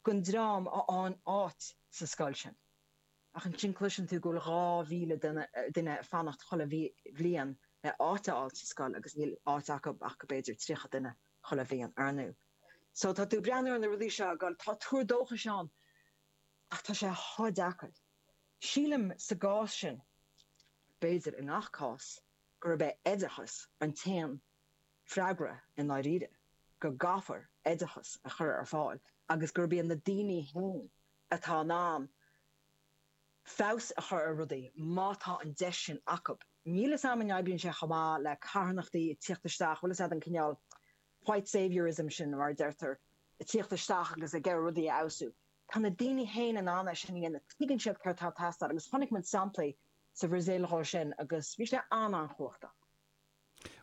den dream a fhaigheann áit sa scoil sin. Ach ansin cloiseann tú go bhfuil 2,000 duine ag fanacht chuile bhliain le áit a fháil sa scoil agus níl áit acu ach go b'fhéidir 30 duine chuile bhliain. Ar ndóigh so tá tú ag breathnú ar na rudaí seo agus tá tuar dóchais ann ach tá sé chomh deacair. Sílim sa gcás sin, b'fhéidir i ngach cás, gurb é oideachas an t-aon. freagra i ndáiríre, go gcaithfear oideachas a chur ar fáil agus gurb iad na daoine féin atá in ann feabhas a chur ar rudaí má tá an deis sin acu. Níl 'fhios a'm an oibríonn sé chomh maith le carthanachtaí ag tíocht isteach, bhfuil 'fhios a'd an cineál white saviour-ism sin mar a deirtear, ag tíocht isteach agus ag iarraidh rudaí a fheabhsú. Tá na daoine féin in ann é sin a dhéanamh, tuigeann siad céard tá ag teastáil agus chonaic muid samplaí sa Bhrasaíl dhó sin agus bhí sé an-an-chumhachtach.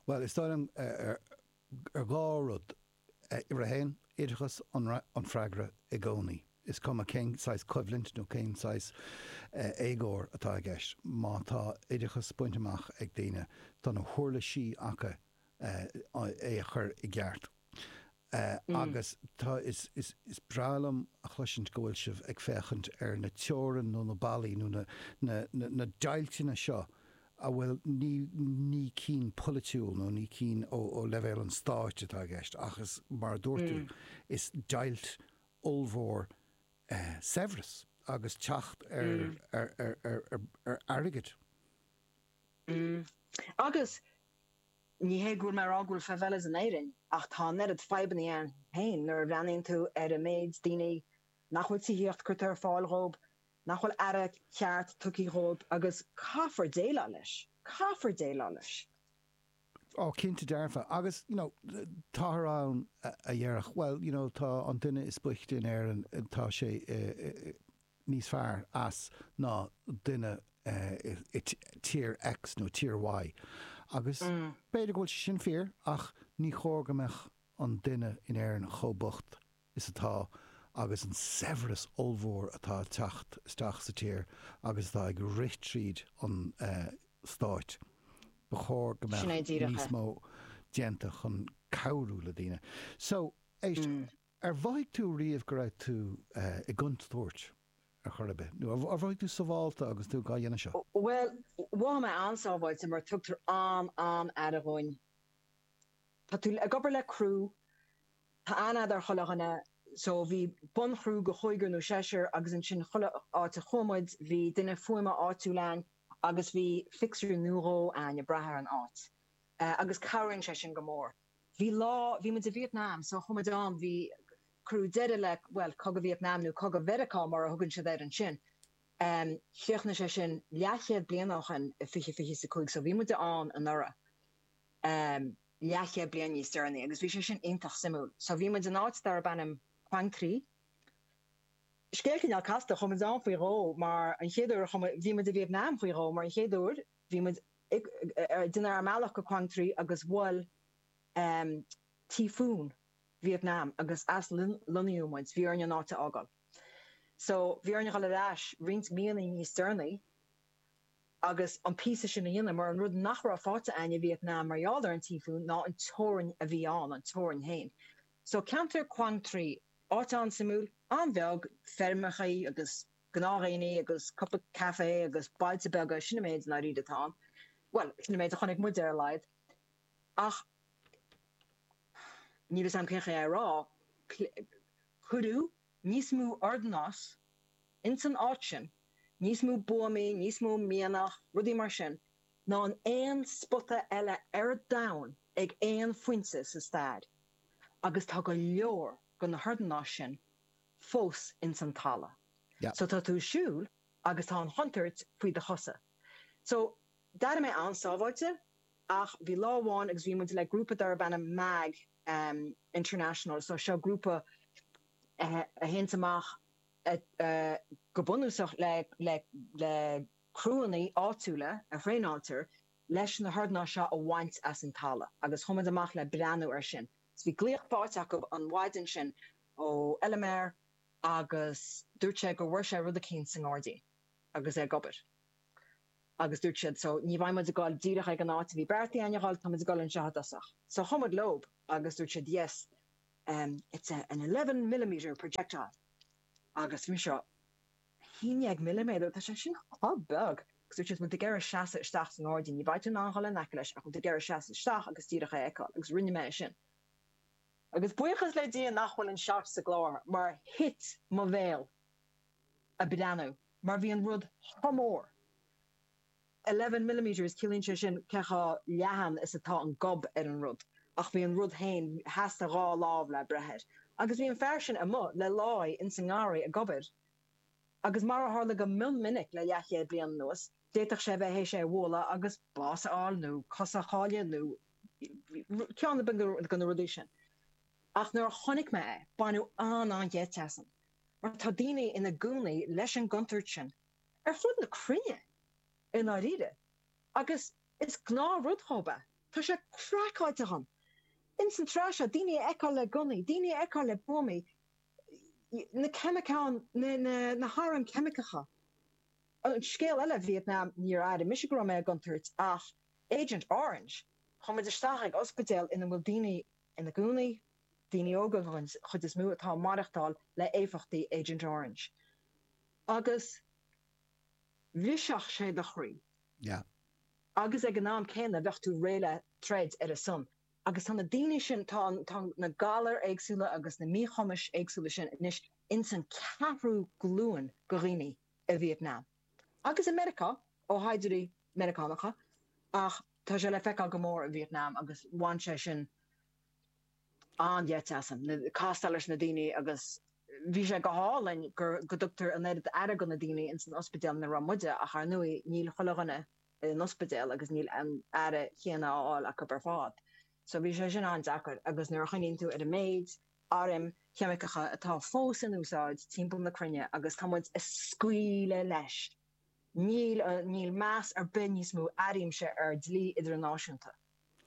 Bhuel, is dóigh liom arís dhá rud. Uimhir a haon, oideachas an freagra i gcónaí, is cuma cén saghas coimhlint nó cén saghas éagóir atá i gceist. Má tá oideachas bainte amach ag daoine, tá na huirlisí acu é a chur i gceart. Sea, agus tá, is, is, is breá liom a chloisint go bhfuil sibh ag féachaint ar na teorainn nó na ballaí nó na, na, na, na deighlteanna seo a bhfuil, ní, ní cinn polaitiúil nó ní cinn ó, ó leibhéal an stáit atá i gceist ach is, mar a dúirt tú, is deighilt ollmhór eh, saibhreas agus teacht ar, ar, ar, ar, ar, ar airgead. Agus, Ní hé go bhfuil mé ag rá go bhfuil favelas in Éirinn ach tá an oiread fadhbanna ann féin nuair a bhreathnaíonn tú ar an méid daoine nach bhfuil tithíocht curtha ar fáil dhóib, nach bhfuil aire ceart tugtha dhóib agus caithfear déileáil leis, caithfear déileáil leis. Ó, cinnte dearfa agus, you know, táthar ann a dhéarfadh, bhuel, you know, tá an duine is boichte in Éirinn, tá sé i, níos fearr as ná duine i tír X nó tír Y. Agus b'fhéidir go bhfuil sé sin fíor ach ní chóir go mbeadh an duine in Éirinn chomh bocht is atá agus an saibhreas ollmhór atá ag teacht isteach sa tír agus atá ag rith tríd an stáit. Ba chóir go mbeadh níos mó déanta chun cabhrú le daoine. So, éist. Ar mhothaigh tú riamh go raibh tú i gcontúirt ar chor ar bith? Nó ar mhothaigh tú sábháilte agus tú dhá dhéanamh seo? Bhuel, mhothaigh mé an-sábháilte mar tugtar an-an-aire dhúinn. Tá tú ag obair le criú, tá an-aird ar chuile dhuine so bhí bunchriú de chúigear nó seisear agus ansin chuile áit a chuaigh muid bhí duine fuaime áitiúil a'inn agus bhí fixer nó dhó a'inn ag brath ar an áit agus cabhraíonn sé sin go mór. bhí lá, bhí muid i Vietnam so chuaigh muid ann, bhí, cuireadh deireadh le, bhuel, Cogadh Vietnam nó Cogadh Mheiriceá mar a thugann siad air ansin. Em, chríochnaigh sé sin leathchéad bliain ó shin i fiche, fiche is a cúig so bhí muid ansin anuraidh, em, leathchéad bliain níos deireanaí agus bhí sé sin iontach suimiúil. So bhí muid in áit darb ainm Quang Tri. Scéal cineál casta, chuaigh muid ann faoi dhó mar an chéad uair a chuaigh muid, bhí muid i Vietnam faoi dhó mar an chéad uair, Bhí muid ag déanamh ár mbealach go Quang Tri agus bhuail tíofún Vietnam, agus aslonnaíodh muid, bhí orainn an áit a fhágáil. So, bhí orainn dhul ar ais roinnt míonna níos deireanaí agus an píosa sin a dhéanamh mar an rud nach raibh faighte againn i Vietnam mar gheall ar an tíofún ná an teorainn a bhí ann, an teorainn féin. So, ceantar Quang Tri, áit an-suimiúil, an-bheag, feirmeacha agus gnáthdhaoine agus cupáin caife agus bailte beaga, sin an méid i ndáiríre atá ann. Bhuel, sin an méid a chonaic muid ar a laghad. Ach níl a fhios agam cén chaoi é a rá, cuireadh níos mó ordanáis ins an áit sin, níos mó buamaí, níos mó mianach, rudaí mar sin, ná in aon spota eile ar an domhan ag aon phointe sa stair, agus tá go leor de na hordanáis sin fós ins an tala'. So tá tú ag siúl agus tá an chontuirt faoi do chosa. So d'airigh mé an-sábháilte ach bhí lá amháin agus bhí muid le grúpa darb ainm Mag em International so seo grúpa a théanns amach eh go bunúsach le le le criúanna áitiúla a thraenáiltear leis na hordnáis seo a bhaint as an tala' agus chuaigh muid amach le breathnú ar sin. So bhí glaoch fáighte acu an mhaidin sin ó fheilméara agus dúirt sé go bhfuair sé rud eicínt sa ngáirdín agus é ag obair agus dúirt siad so ní bheidh muid ag gul díreach ag an áit a bhí beartaithe ainn a ghul tá muid ag gul anseo i dtosach so chuaigh muid leob agus dúirt siad yes em it's a an eleven millimetre projectile agus bhí mise haon déag milliméadar tá sé sin chomh beag agus dúirt siad bhfuil tú ag iarraidh seasamh isteach sa ngáirdín ní bheidh tú in ann ghul in aice leis ach bhfuil tú ag iarraidh seasamh isteach agus díreach é a fheiceáil agus rinne mé é sin. Agus buíochas le Dia nach bhfuil an seat sa gclár mar thit mo bhéal ag breathnú mar bhí an rud chomh mór. Eleven millimetres, ciallaíonn sé sin cé chomh leathan is atá an gob ar an rud. Ach bhí an rud féin, theastaigh dhá lámh le breith air. Agus bhí an fear sin amuigh le láí ins an ngarraí ag obair agus mar a tharla go mion minic le leathchéad bliain anuas, d'fhéadfadh sé a bheith th'éis é a bhualadh agus bás a fháil nó cosa a chailleadh nó ceann de na rudaí sin. Ach nuair a chonaic mé é, baineadh an-an-gheit asam, mar tá daoine ina gcónaí leis an gcontúirt sin ar fud na cruinne, i ndáiríre, agus is gnáthrud dhób é. Tá sé craiceáilte a'inn, ins an tráth seo, daoine a fheiceáil le gunnaí, daoine a fheiceáil le buamaí, na ceimiceáin, na hairm cheimiceacha. An scéal eile, Vietnam, níor airigh mise go raibh mé i gcontúirt ach Agent Orange. Chuaigh muid isteach ag ospidéal ina bhfuil daoine ina gcónaí, daoine óga den chuid is mó atá ag maireachtáil le héifeachtaí Agent Orange. Agus bhrisfeadh sé do chroí. Yeah. Agus ag an am céanna bheadh tú réidh le troid ar a son. agus tá na daoine sin, tá, tá na galair éagsúla agus na míchumais éagsúla sin anois ins an cheathrú glúin de dhaoine i Vietnam agus i Meiriceá ó shaighdiúirí Meiriceánacha ach tá sé le feiceáil go mór i Vietnam agus bhain sé sin an-gheit asam, castáil leis na daoine agus bhí sé go hálainn go dtugtar an oiread aire go na daoine ins an ospidéal ina raibh muide ach, ar ndóigh, níl chuile dhuine in ospidéal agus níl an aire chéanna á fháil acub ar fad. So bhí sé sin an-deacair agus nuair a chuimhníonn tú ar an méid airm cheimiceacha atá fós in úsáid timpeall na cruinne agus tá muid a scaoileadh leis, níl, níl meas ar bith níos mó airímse ar dlí idirnáisiúnta.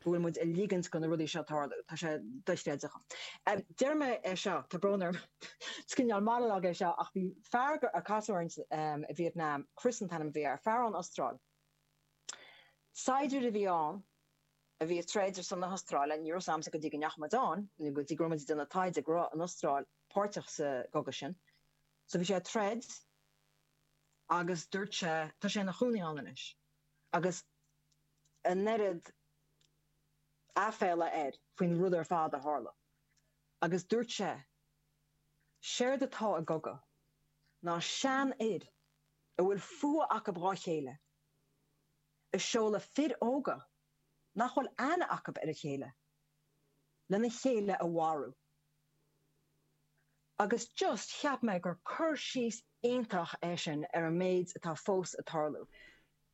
go bhfuil muid ag ligint go na rudaí seo tarlú. Tá sé dochreidte. Deirim é seo, tá brón orm, is cineál monologue é seo ach bhí fear a casadh orainn i Vietnam, Chris an t-ainm a bhí air, fear ón Astráil. Saighdiúir a bhí ann a bhí ag troid ar son na hAstráile, ní raibh fhios a'msa go dtí go ndeachaigh muid ann nó go dtí go raibh muid ag déanamh taighde go raibh an Astráil páirteach sa gcogadh sin. So bhí sé ag troid agus dúirt sé, tá sé ina chónaí ann anois agus. an oiread aiféala air faoin rud ar fad a tharla agus dúirt sé, 'Séard atá i gcogadh ná seanfhir a bhfuil fuath acub dhá chéile a seoladh fir óga nach bhfuil aithne acub ar a chéile lena chéile a mharú. Agus just cheap mé gur cur síos iontach é sin ar an méid atá fós ag tarlú.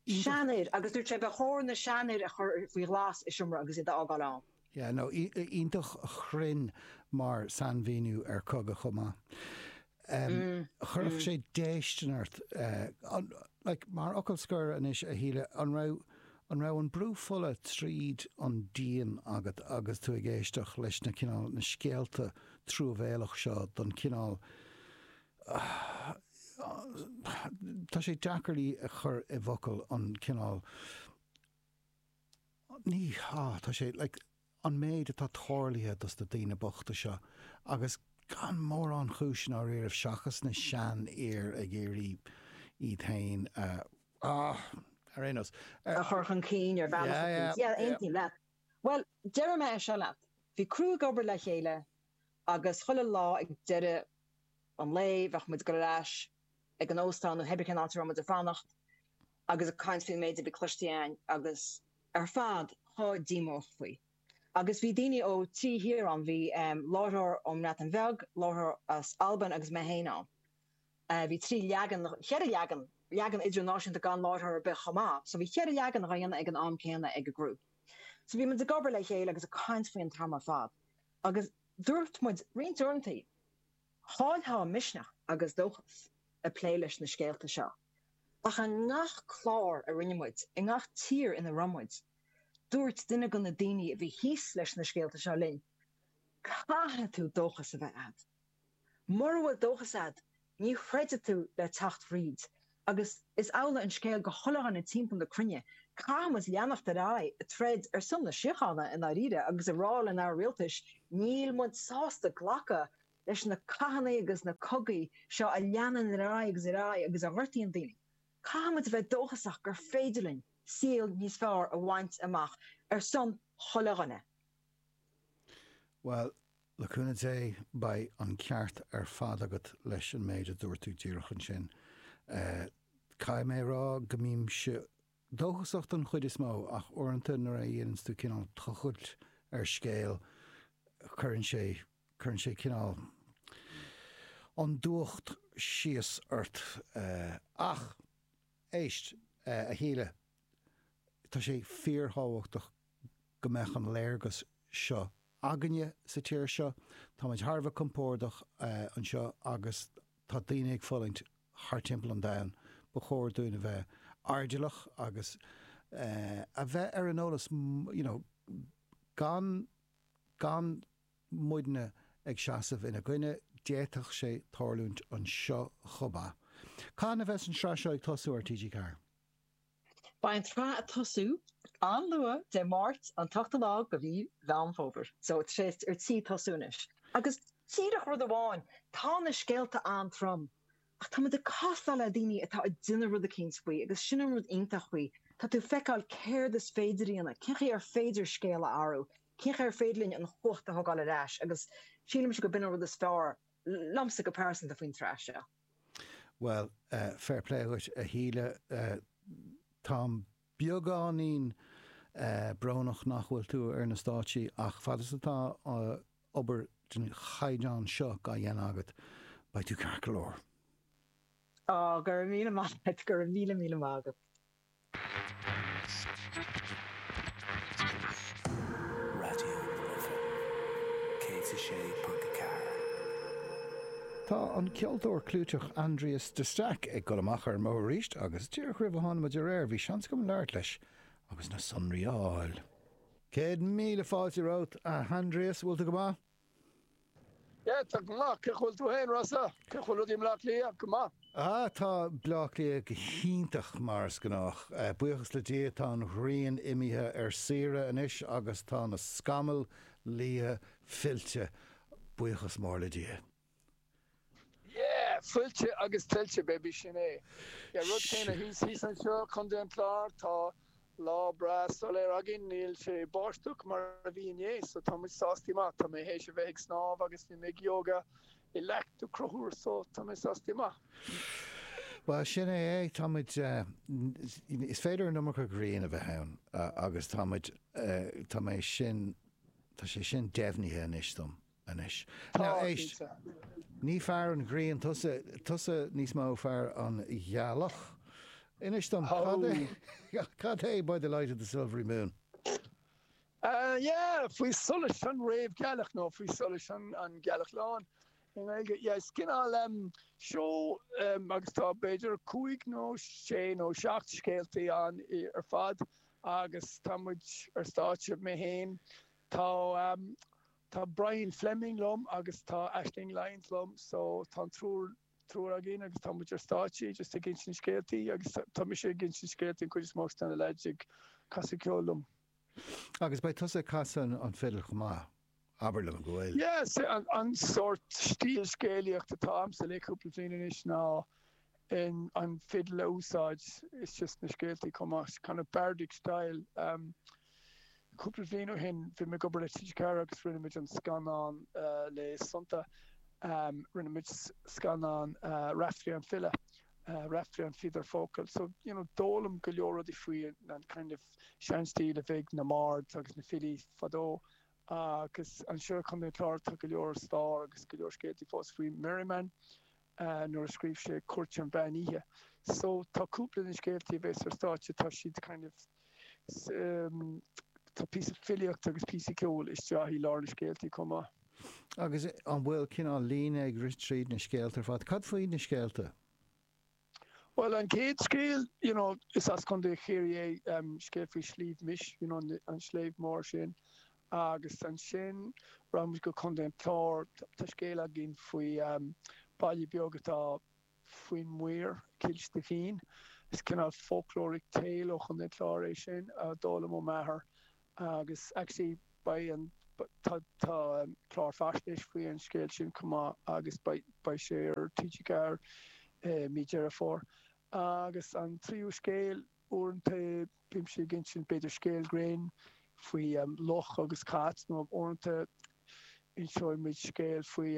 Seanfhir, agus dúirt sé, ba chóir na seanfhir a chur faoi ghlas i seomra agus iad a fhágáil ann. Yeah, no, iontach chruinn mar sainmhíniú ar cogadh chomh maith. Chuirfeadh sé déistin ort, like, mar fhocal scoir anois, a Shíle, an raibh, An raibh an brú fola tríd an díon agat agus tú ag éisteacht leis na cineál, na scéalta truamhéalach seo don cineál, tá sé deacair í a chur i bhfocail, an cineál, ní, á, tá sé, like, an méid atá tarlaithe do na daoine bochta seo agus gan mórán chúis i ndáiríribh seachas na seanfhir ag iarraidh iad féin a ah ar aon nós a a chur chun cinn ar bhealach yeah eicínt yeah yeah aontaím leat bhuel deireadh mé é seo leat bhí criú ag obair le chéile agus chuile lá ag deireadh an lae bheadh muid ag goil ar ais ag an óstán nó cibé cén áit a raibh muid ag fanacht agus ag caint faoin méid a bhí cloistí again agus muid ar fad chomh díomách faoi. Agus bhí daoine ó trí thír ann, bhí láithreoir ón mBreatain Bheag, láithreoir as Albain agus mé féin ann. Bhí trí leagan nó cheithre leagan, leagan idirnáisiúnta gan láithreoir ar bith chomh maith, so bhí cheithre leagan dhá dhéanamh ag an am céanna ag an gcriú. So bhí muid ag obair le chéile agus ag caint faoi an t-am ar fad agus dúirt muid roinnt uaireanta Chaillfeá misneach agus dóchas ag plé leis na scéalta seo. Ach i ngach clár a rinne muid, i ngach tír ina raibh muid, dúirt duine de na daoine a bhí thíos leis na scéalta seo linn, 'Caithfidh tú dóchas a bheith agat. Mura bhfuil dóchas agat, ní throidfidh tú le teacht tríd. Agus is amhlaidh an scéal do oileáin timpeall na cruinne. Caithfidh muid leanacht ar aghaidh ag troid ar son na síochána i ndáiríre agus ag rá lenár rialtais níl muid sásta glacadh leis na cathanna agus na cogaí seo a leanann ar aghaidh agus ar aghaidh agus a ghortaíonn daoine. Caithfidh muid a bheith dóchasach gur féidir linn saol níos fearr a bhaint amach ar son chuile dhuine. Bhuel, Le cúnamh Dé, beidh an ceart ar fad agat leis an méid a dúirt tú díreach ansin. Caithfidh mé a rá go mbímse dóchasach den chuid is mó ach uaireanta nuair a dhéananns tú cineál tochailt ar scéal cuireann sé, cuireann sé cineál an dúch síos ort. Ach, éist, a Shíle. tá sé fíorthábhachtach go mbeadh an léargas seo againne sa tír seo. Táimid thar a bheith compordach anseo agus tá daoine ag fulaingt thart timpeall an domhain. Ba chóir dúinn a bheith airdeallach agus a bheith ar an eolas you know gan gan muidne ag seasamh ina gcoinne, d'fhéadfadh sé tarlúint anseo chomh maith. Cathain a bheas an tsraith seo ag tosú ar TG4? Beidh an tsraith ag tosú an-luath Dé Máirt an t-ochtú lá de mhí Mheán Fómhair, so tá sé ar tí tosú anois. Agus díreach rud amháin, tá na scéalta an-trom ach tá muid ag castáil le daoine atá ag déanamh rud eicínt faoi agus sin an rud iontach faoi, tá tú ag feiceáil céard is féidir a dhéanamh, cén chaoi ar féidir scéal a athrú, cén chaoi ar féidir linn an chumhacht a thógáil ar ais agus sílimse gurb in é an rud is fearr liomsa go pearsanta faoin tsraith seo. Bhuel, fair play dhuit, a Shíle. Tá mé beagáinín brónach nach bhfuil tú ar na stáitsí, ach fad is atá obair den chaighdeán seo dhá dhéanamh agat, beidh tú ceart go leor. Ó, go raibh míle maith agat, go raibh míle míle maith agat. Raidió na Life 106.4. Tá an ceoltóir clúiteach Aindrias de Staic ag dul amach ar an mbóthar arís agus díreach roimh a tháinig muid ar aer bhí seans agam labhairt leis agus na sonraí a fháil. Céad míle fáilte romhat, a Aindrias, bhfuil tú go maith? Yeah, tá go maith, cén chaoi bhfuil tú féin, Rossa? Cén chaoi bhfuil rudaí i mBleá Cliath? Go maith. Ah, tá Bleá Cliath go hiontach, mar is gnách. Buíochas le Dia, tá an ghrian imithe ar saoire anois agus tá na scamaill liatha fillte, buíochas mór le Dia. Yeah! Fillte agus tuillte, baby, sin é. Yeah, rud céanna thíos, thíos anseo, Contae an Chláir, tá lá breá soiléir againn, níl sé báisteach mar a bhí inné, so tá muid sásta go maith, tá mé théis a bheith ag snámh agus bhí mé ag yoga i Leacht Uí Chonchubhair, so tá mé sásta go maith. Bhuel, sin é é, tá muid, is féidir an iomarca grian a bheith ann agus tá muid, tá mé sin, tá sé sin deimhnithe anois dom. anois. Tá, Now éist. cinnte. Ní fear an ghrian tusa, tusa níos mó fear an ghealach. Inis dom, Ó! cad é, cad é By the Light of the Silvery Moon? Ah, yeah, Faoi Solais an Réamhghealach nó Faoi Solais an an Ghealach Lán i nGaeilge. Yeah, is cineál em seó é agus tá b'fhéidir cúig nó sé nó seacht scéaltaí ann ar fad agus tá muid ar stáitse mé fhéin. Tá em Tá Brian Fleming liom agus tá Aisling Lyons liom so tá an triúr triúr againn agus tá muid ar stáitse just ag insint scéaltaí agus tá mise ag insint scéaltaí an chuid is mó agus tá na leaids ag casadh ceoil liom. Agus beidh tusa ag casadh an fidil chomh maith, abair liom go bhfuil? Yeah, an sórt stíl scéalaíocht atá agamsa le cúpla bliain anois ná in ann fidil a úsáid is just na scéaltaí chomh maith, kind of bardic style. Cúpla bhliain ó shin, bhí mé ag obair le TG4 agus rinne muid an scannán le Sónta, rinne muid scannán Raiftearaí an File, Raiftearaí an Fíodóir Focal, so you know d'fhoghlaim go leor rudaí faoi an kind of seanstíl a bhí ag na mBard agus na Filí fadó agus anseo ar Chontae an Chláir tá go leor stáir agus go leor scéaltaí fós faoi Merryman. a nuair a scríobh sé Cúirt an Mheán Oíche so tá cúpla den scéaltaí a bhéas ar stáitse tá siad kind of tá píosa filíochta agus píosa ceol isteach i lár na scéaltaí chomh maith. Agus an bhfuil cineál líne ag rith tríd na scéalta ar fad? Cad faoi na scéalta? Bhuel an chéad scéal you know is as Contae Chiarraí é, scéal faoi Shliabh Mis you know an sliabh mór sin Agus ansin raghaidh muid go Contae an Chláir. Tá scéal againn faoi baile beag atá faoin muir, Cill Stifín. Is cineál folkloric tale ó Chontae an Chláir é sin a d'fhoghlaim ó m'athair agus actually beidh an, tá clár faisnéise faoi an scéal sin chomh maith agus beidh sé ar TG4 i mí Dheireadh Fómhair. Agus an tríú scéal, Uaireanta bímse ag insint b'fhéidir scéal grinn faoi luch agus cat nó uaireanta inseoidh muid scéal faoi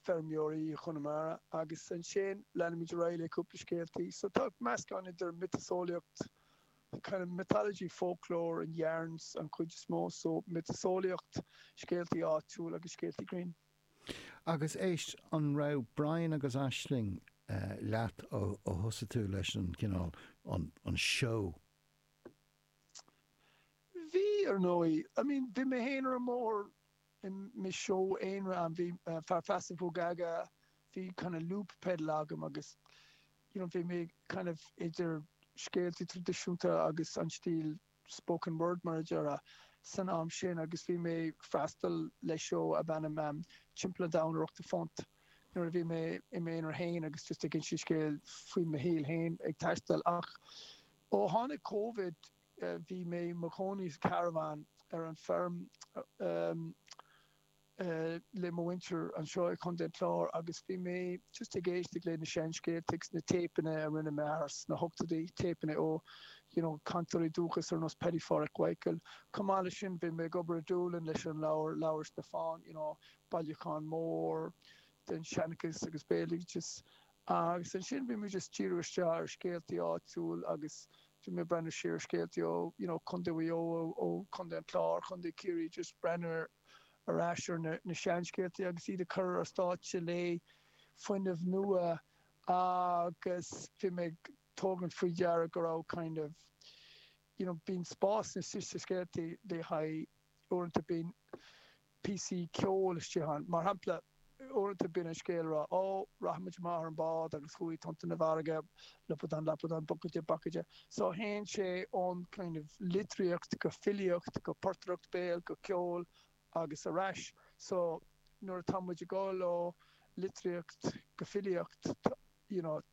feirmeoirí Chonamara agus ansin leanfaimid ar aghaidh le cúpla scéaltaí. So tá meascán idir miotaseolaíocht, kind of mythology, folklore and yarns an chuid is mó, so miotaseolaíocht, scéaltaí áitiúla agus scéaltaí grinn. Agus éist, an raibh Brian agus Aisling leat ó thosaigh tú leis an gcineál, an, an seó? Bhí, ar ndóigh. I mean, bhí mé féin ar an mbóthar i mo sheó aonair, bhí Fear Feasa Moogaga, bhí kind of loop pedal agam agus you know bhí mé kind of idir scéalta traidisiúnta agus an stíl spoken word mar a déarfá, san am sin agus bhí mé freastal le seó ab ainm Timpeall an Domhain ar Ochtó Punt nuair a bhí mé i m'aonar féin agus just ag insint scéil faoi mo shaol féin ag taisteal ach ó tháinig Covid bhí mé i mo chónaí sa caravan ar an feirm le mo mhuintir anseo i Contae an Chláir agus bhí mé just ag éisteacht le na seanscéalta agus na téipeanna a rinne m'athair sna hochtóidí, téipeanna ó, you know, cainteoirí dúchais ar nós Paddy Pháraic Mhichíl. Chomh maith leis sin bhí mé ag obair i Dúlainn leis an leabhar, Leabhar Stiofáin, you know, bailiúchán mór den seanchas agus béaloideas Agus ansin bhí muid just díriú isteach ar scéaltaí áitiúil agus bhí mé ag breathnú siar ar scéaltaí ó you know Chontae Mhaigh Eo, ó Chontae an Chláir, Chontae Chiarraí just breathnú ar ar ais ar na na seanscéaltaí agus iad a chur ar stáitse le fuinneamh nua agus bhí mé ag tógaint faoi deara go raibh kind of you know bíonn spás sna sna scéaltaí le haghaidh uaireanta bíonn píosaí ceoil istigh ann mar shampla uaireanta bíonn an scéal ag rá ó rachaidh muid amach ar an bhád agus chuaigh tonnta na farraige lupadan lapadan bucaide bacaide so théann sé ón kind of litríocht go filíocht go portaireacht béil go ceol agus ar ais so nuair atá muid ag dul ó litríocht go filíocht you know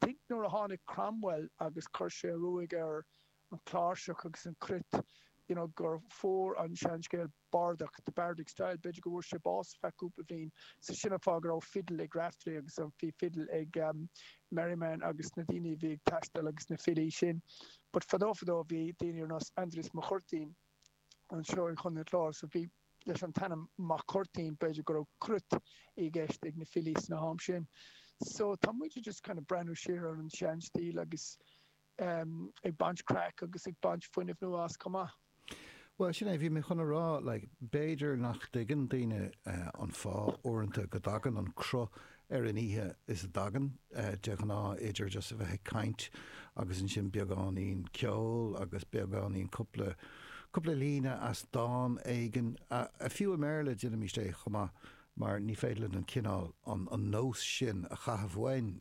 Think nuair a tháinig Cromwell agus chuir sé ruaig ar an chláirseach agus an chruit you know gur fuair an seanscéal bardach, the bardic style, b'fhéidir go bhfuair sé bás ar feadh cúpla bhliain so sin an fáth go raibh fiddle ag Raftery agus bhí fiddle ag Merriman agus na daoine a bhí ag taisteal agus na filí sin but fadó fadó bhí daoine ar nós Aindrias Mac Cuirtín anseo i gContae an Chláir so bhí leis an t-ainm Mac Cuirtín, b'fhéidir go raibh cruit i gceist ag na filí san am sin. So tá muide just kind of breathnú siar ar an seanstíl agus em ag baint craic agus ag baint fuinneamh nua as chomh maith. Bhuel sin é, bhí mé chun a rá like b'fhéidir nach dtuigeann daoine eh an fáth uaireanta go dtagann an cruth ar an oíche is a dtagann de ghnáth idir just a bheith ag caint agus ansin beagáinín ceol agus beagáinín cúpla cúpla líne as dán éigin ah fiú i mBéarla déanaimid é chomh maith mar ní féidir linn an cineál an an nós sin a chaitheamh uainn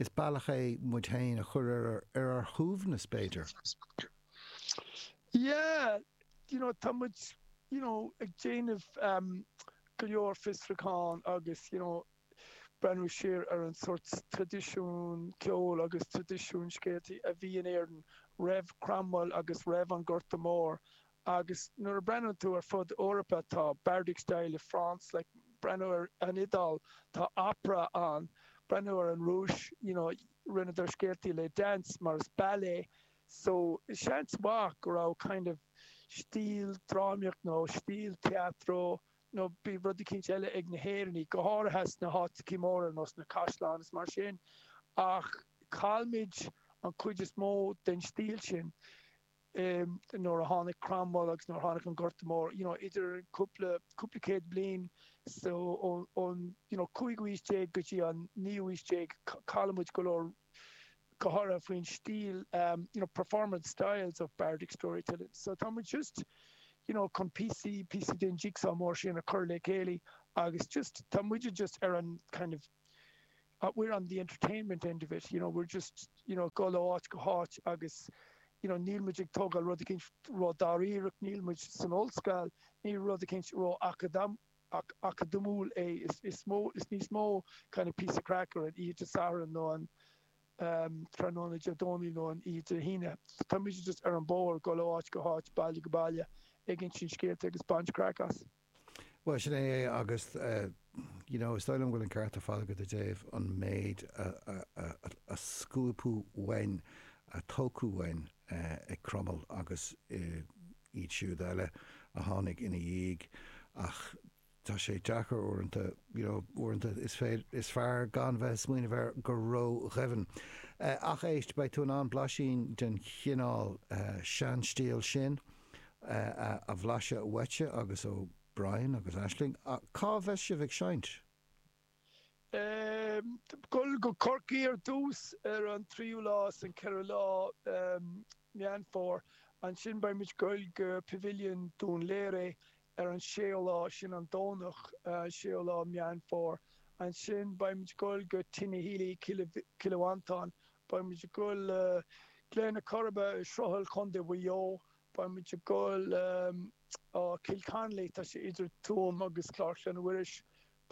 is bealach é le muid féin a chur ar ar ár shuaimhneas b'fhéidir. Yeah you know tá muid you know ag déanamh go leor fiosrúchán agus you know breathnú siar ar an sórt traidisiún ceoil agus traidisiún scéaltaí a bhí in Éirinn roimh Chromwell agus roimh an Gorta Mór agus nuair a bhreathnaíonn tú ar fud Eorpa tá Bardic Style i France like breathnú ar an Iodáil tá Opera ann breathnú ar an Rúis you know rinneadar scéaltaí le Dance mar is ballet so seans maith go raibh kind of stíl drámaíocht nó stíl teatro nó bhí rud eicínt eile ag na hÉireannaigh, go háirithe sna háiteachaí móra nó sna caisleáin is mar sin, ach chaill muid an chuid is mó den stíl sin eh nuair a tháinig Cromwell agus nuair a tháinig an Gorta Mór, you know idir cúpla, cúpla céad bliain so ón, ón you know cúigiú aois déag go dtí an naoú aois déag chaill muid go leor go háirithe faoin stíl, you know, performance styles of bardic storytelling. So tá muid just, you know, chun píosaí, píosaí den jigsaw mór sin a chur le chéile agus just, tá muide just ar an kind of, we're on the entertainment end of it, you know, we're just, you know, dul ó áit go háit agus, you know, níl muid ag tógáil rud ar bith ró-dháiríreach, níl muid san ollscoil, níl rud ar bith ró-acadamhach, ach acadamúil é. Is níos mó kind of píosa craic ar an oíche Satharn nó an tráthnóna Dé Domhnaigh nó an oíche Dé hAoine. Tá muid just ar an bóthar, dul ó áit go háit, baile go baile, ag insint scéalta agus ag baint craic as. Bhuel, sin é é agus you know is dóigh liom go bhfuil an ceart ar fad agat i dtaobh an méid a scuabadh uainn, a tógadh uainn ag Cromail agus i, iad siúd eile a tháinig ina dhiaidh ach tá sé deacair uaireanta, you know, uaireanta is féidir, is fearr gan bheith ag smaoineamh air go ró-dhoimhin. Ach éist, beidh tú in ann blaisín den chineál seanstíl sin a bhlaiseadh uaitse agus ó Brian agus Aisling. Cá bheas sibh ag seinnt? Ag dul go Corcaigh ar dtús ar an tríú lá is an ceathrú lá Meán Fómhair. Ansin beidh muid goil go Pavilion Dún Laoghaire ar an séú lá, sin an Domhnach an séú lá Meán Fómhair. Ansin beidh muid goil go Tinahely, Cill Mhantáin. Beidh muid goil Gleann Corrib, Sruthail, Co. Mhaigh Eo. Beidh muid goil Kilconly, tá sé idir Tuam agus Clár Chlainne Mhuiris,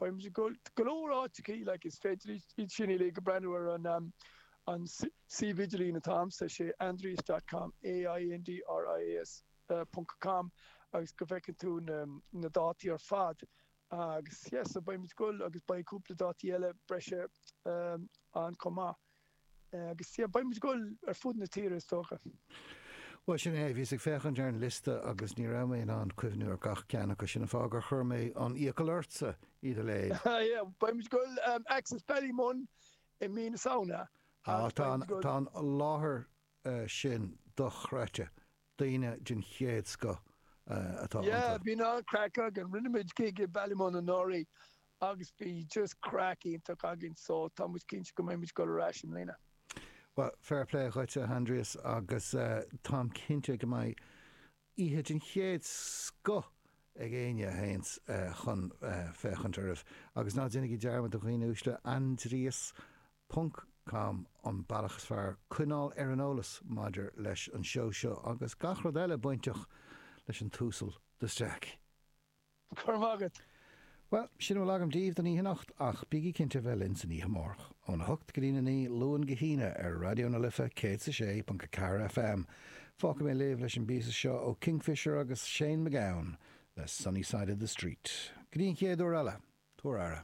Beidh muid ag goil go leor áiteachaí, like, is féidir iad sin uilig a breathnú ar an an suíomh idirlín atá a'msa, sé Aindrias dot com, AINDRIAS ponc com agus go bhfeiceann tú na na dátaí ar fad agus, yeah, so beidh muid ag goil agus beidh cúpla dátaí eile breise ann chomh maith. Agus, yeah, beidh muid ag dul ar fud na tíre, is dócha. Bhuel, sin é. Bhíos ag féachaint ar an liosta agus ní raibh mé in ann cuimhniú ar gach ceann acu, sin an fáth gur chuir mé an iachall ortsa iad a léamh. Yeah, beidh muid ag dul go Axis Ballymun i mí na Samhna. Ah, tá an láthair sin dochreidte. daoine den chéad scoth atá iontu. Bhí an craic againn. Rinne muid gig i Ballymun anuraidh agus bhí just craic iontach againn so tá muid cinnte go mbeidh muid ag dul ar ais i mbliana. Bhuel, fair play dhuit, a Aindrias, agus táim cinnte go mbeidh oíche den chéad scoth ag éinne a théanns chun féachaint oraibh. Agus ná déanaigí dearmad, a dhaoine uaisle, Aindrias Ponc Com, an bealach is fearr coinneáil ar an eolas maidir leis an seó seo agus gach rud eile bainteach leis an tUasal de Staic. Go raibh maith agat! Bhuel, sin a bhfuil agam daoibh don oíche anocht ach bígí cinnte a bheith linn san oíche amárach, óna hocht go dtí'n a naoi, Luan go hAoine, ar Raidió na Life 106.4 FM. Fágfaidh mé libh leis an bpíosa seo ó Kingfishr agus Shane McGowan le Sunny Side of the Street. Go dtí'n chéad uair eile, tabhair aire.